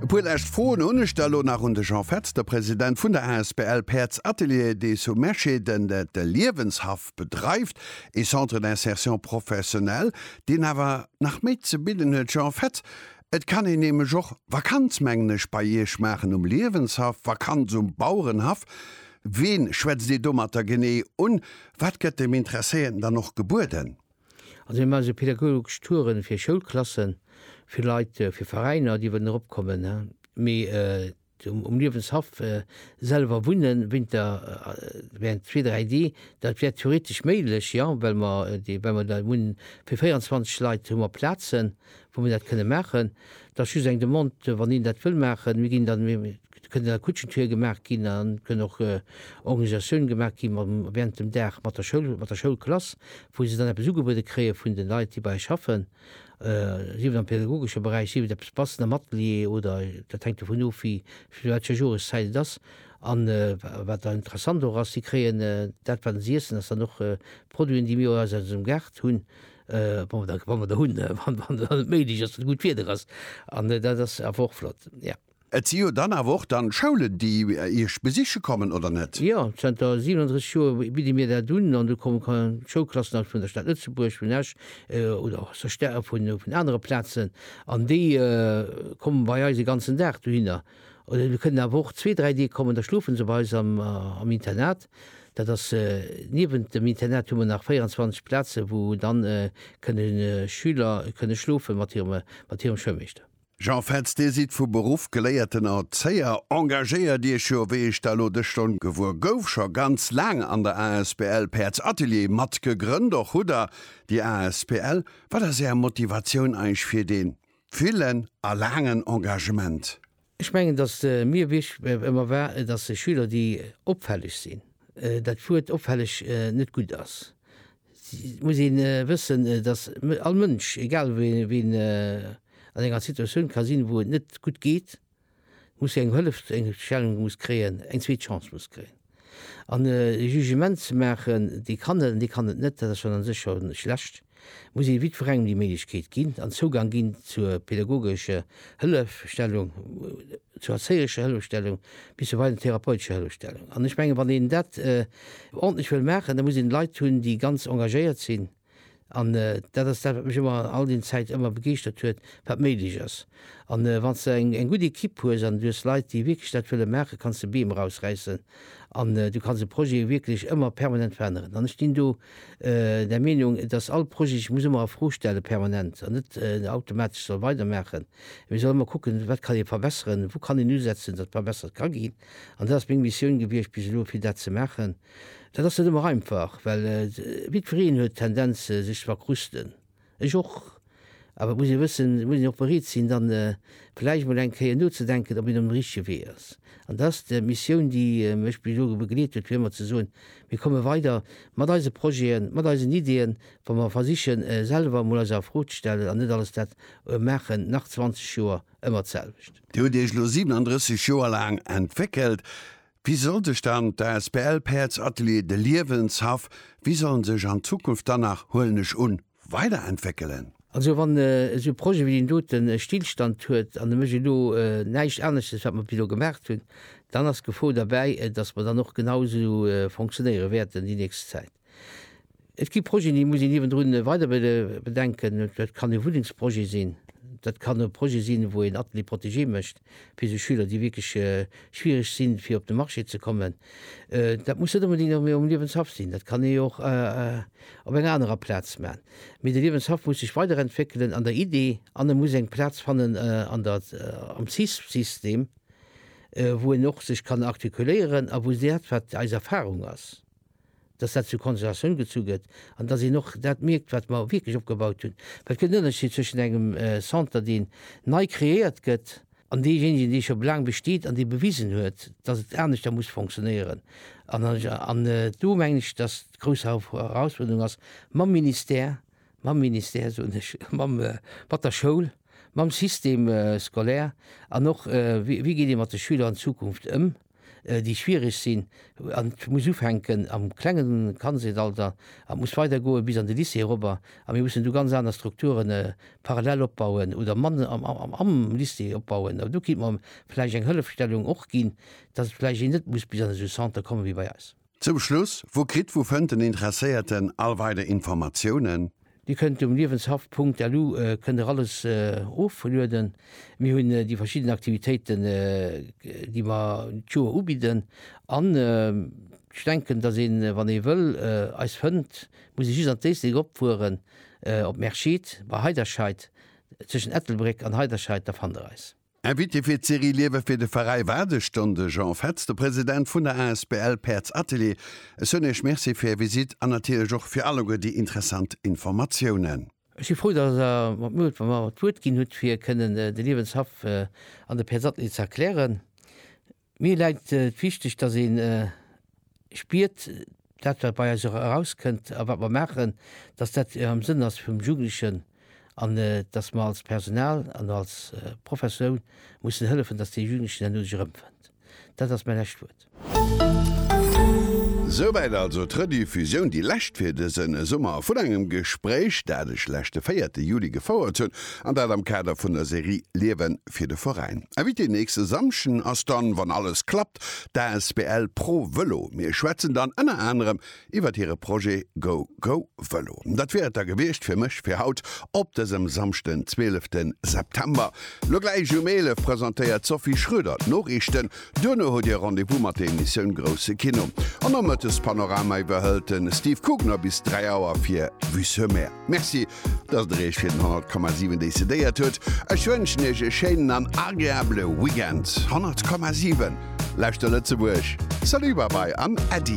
E puer lescht Froen hunn ech da lo nach un de Jean Fetz, de President vun der asbl Päerds Atelier des Sous Meschê, den de Liewenshaff bedreift, ee Centre d'insertion professionnelle, deen awer nach méi ze bidden huet. Jean Fetz, Et kann een nämlech och Vakanz, mengen ech, bei Iech maachen um Liewenshaff, Vakanz um Bauerenhaff. Ween schwätzt Dir domatter genee un? Wat gëtt dem Interesséierten dann och gebueden? Also mir maache pedagogesch Touren fir Schoulklassen, fir Leit, fir Veräiner, déi wëllen erop kommen. Mee um Liewenshaff selwer wunne Winter, während zwee, dräi Dee, dat wär theoretesch méiglech, jo, well mer dee, well mer dat hunn, fir 24 Leit hu mer Plazen, wou mer dat kënne maachen. Dat ass just eng Demande, wann een dat wëll maachen. Mir ginn dann, Et kënnt a Kutschentour gemaach ginn an et kënn och Organisatioune gemaach gi während dem Dag mat der Schoul, mat der Schoulklass, wou se dann eppes ugebuede kréie vun de Leit, déi bei eis schaffen, sief et am pädagogesche Beräich, sief et eppes bassen am Atelier oder dat hänkt dovun of, wéi zu wat fir enger Joreszäit et ass. An wat dann interessant och ass, si kréien dat, wat si iessen, ass dann och Produiten, déi mir eis aus ësem Gaart hunn, wa mer der hunn, wann et méiglech ass, wann gutt Wieder ass. An dat ass awer och flott, jo. Et si jo dann awer och dann Schoulen, déi Iech besiche kommen, oder net? Jo, zënter 37 Joer bidde mir dat un an do komme Schoulklassen aus vun der Stad Lëtzebuerg, vun Esch oder och sou Stäer vun anere Plazen an déi komme bei eis e ganzen Dag dohinner. Oder se kënnen awer och zwee, dräi Deeg kommen, da schlofe se bei eis am Internat. Dat ass, niewent dem Internat hu mer nach 24 Plaze wou dann kënne Schüler kënne schlofe mat hirem Schoulmeeschter. Jean Fetz, Dir sidd vu Beruff geléierten Erzéier, engagéiert Iech jo, wéi ech der elo dës Stonn gewuer gouf, scho ganz laang an der asbl Päerds Atelier mat gegrënnt. Och hutt Der déi asbl. Wat ass Är Motivatioun eich fir dee villen a laangen Engagement? Ech mengen, datt mir wichteg ëmmer war, datt Schüler déi opfälleg sinn, dat Wuert opfälleg net gutt ass, Et muss ee wëssen, datt all Mënsch, egal wéi en an enger Situatioun ka sinn, wou et net gutt geet, muss eng Hëllef, eng Stellung muss kréien, eng zweet Chance muss kréien. An e Jugement ze maachen, dee kann et an dee kann et net, dat ass schonn a sech scho schlecht, muss ee jiddwerengem déi Méiglechkeet ginn an Zougang ginn zur pädagogescher Hëllefstellung, zur erzéierescher Hëllefstellung bis zu weisen therapeutescher Hëllefstellung. An ech mengen, wann een dat ordentlech wëll maachen, da muss een Leit hunn, déi ganz engagéiert sinn. An dat ass dat, wat mech ëmmer all deenen Zäiten ëmmer begeeschtert huet, wat méiglech ass. An wann s de eng gutt Ekipp hues an du hues Leit, déi wierklech dat wëlle maachen, kanns de Beem erausräissen an du kanns e Projet wierklech ëmmer permanent veränneren. An ech stinn do der Meenung, dass all Projet sech muss ëmmer a Fro stellen, permanent, an net automatesch soll weidermaachen. Mee soll ëmmer kucken, Wat kann ee verbesseren? Wou kann een usetzen, datt verbessert ka ginn? An dat ass meng Missioun gewiescht bis elo, fir dat ze maachen. Dat ass net ëmmer einfach, well jiddwereen huet d'Tendenz, sech ze verkrusten. Ech och. Awer et muss ee wëssen, et muss een och bereet sinn, dann vläicht emol eng Kéier nozedenken, ob een op dem richtege Wee ass. An dat ass d'Missioun, déi mech bis elo begleet huet, fir ëmmer ze soen, mir komme weider mat eise Projeten, mat eisen Ideeën, wa mer versichen, selwer emol eis a Fro ze stellen an net alles dat maachen, nach 20 Joer ëmmer d'selwecht. Dir hutt Iech elo 37 Joer laang entwéckelt. Wie soll sech dann d'asbl Päerds Atelier De Liewenshaff, wie soll en sech an Zukunft dann nach, huelen ech un, weiderentwéckelen? Also wann esou e Projet wéi deen doten e Stillstand huet an e mécht elo näischt aneschtes wat mer bis elo gemaacht hunn, dann ass d'Gefor derbäi, datt mer dann och genau esou fonctionnéiere wäerten déi nächst Zäit. Et gi Projeten, déi muss een niewendrun weider bedenken. Dat kann e Wunnengsprojet sinn, dat kann e Projet sinn, wou een Atelier protégé mécht fir esou Schüler, déi wierklech schwiereg sinn, fir op de Marché ze kommen. Dat muss net onbedéngt am um Liewenshaff sinn, dat kann ee och op enger anerer Plaz maachen. Mee de Liewenshaff muss sech weiderentwéckelen an der Idee an e muss eng Plaz fannen an der am CISP-System, wou en och sech kann artikuléieren a wou dat, wat eis Erfarung ass, dass dat zur Konsultatioun gezu gëtt an dass een och dat mierkt, wat mer wierklech opgebaut hunn. Well et gëtt en Ënnerscheed zwëschen engem Centre, deen nei kreéiert gëtt, an deejéinegen, dee scho laang besteet an dee bewisen huet, dass et aneschter muss funktionéieren. An do mengen ech, dass d'grouss Herausfuerderung ass, mam Ministère, mam Ministère, soen ech, mam, mat der Schoul, mam Système scolaire an och, wéi geet ee mat de Schüler an Zukunft ëm, déi schwiereg sinn, an et muss ufänken am klengen Kandseetalter a muss weider goe bis an de Lycée erobber, a mir mussen du ganz aner Strukturen parallel opbauen oder man am Lycée opbauen, a do kéint mer vläicht eng Hëllefstellung och ginn, datt vläicht een net muss bis an esou e Centre komme wéi bei eis. Zum Schluss, Wou kritt wou fënnt den Interesséierten all weider Informatiounen? Dir kënnt um liewenshaft.lu kënnt der alles oflueden. Mir hunn déi verschidden Aktivitéiten déi mer d'Joer ubidden an ech denken dass een wann ee wëll eis fënnt muss ee just an d'Éislek opfueren op Merschid bei Heiderscheid, zwëschen Ettelbréck an Heiderscheid da fannt der eis. Invité fir d'Serie Liewe fir de Veräi war de Ston de Jean Fetz, de President vun der asbl Päerds Atelier. Ech soen Iech Merci fir Är Visite an natierlech och fir alleguer déi interessant Informatiounen. Ech si frou, datt Der mer d'Wuert ginn hutt, fir kënnen de Liewenshaff an de Päerds Atelier ze erklären. Mir läit et wichteg, dass ee spiert, dat wat bei eis erauskënnt a wat mer maachen, dass dat am Sënn ass vum Jugendlechen an dass mer als Personal an als Professoun mussen hëllefen, dass dee Jugendlechen herno sech erëmfënnt. Dat ass mäi lescht Wuert. Souwäit also d'Rediffusioun, déi lescht fir dëse Summer, vun engem Gespréich, dat ech leschte véierte Juli gefouert hunn, an dat am Kader vun der Serie Liewen fir de Veräin. Invité nächste Samschden ass dann, wann alles klappt, d'asbl Pro Vëlo. Mir schwätzen dann ënner anerem iwwert hire Projet Go Go Vëlo. Dat wier et da gewiescht fir mech fir haut op dësem Samschden 12 September. Lo gläich um 11 presentéiert d'Sophie Schroeder d'Noriichten. Duerno hutt Dir Rendez-vous mat der Emissioun Grousse Kino. An Nomëttes Panorama iwwerhëlt de Steve Kugner bis 3 Auer fir Vue sur Mer. Merci Dass der Iech fir den 100,7 décidéiert huet. Ech wënschen Iech e schéinen an agreabele Weekend. 100,7 Lauschter Lëtzebuerg! Salut, Bye Bye an Äddi!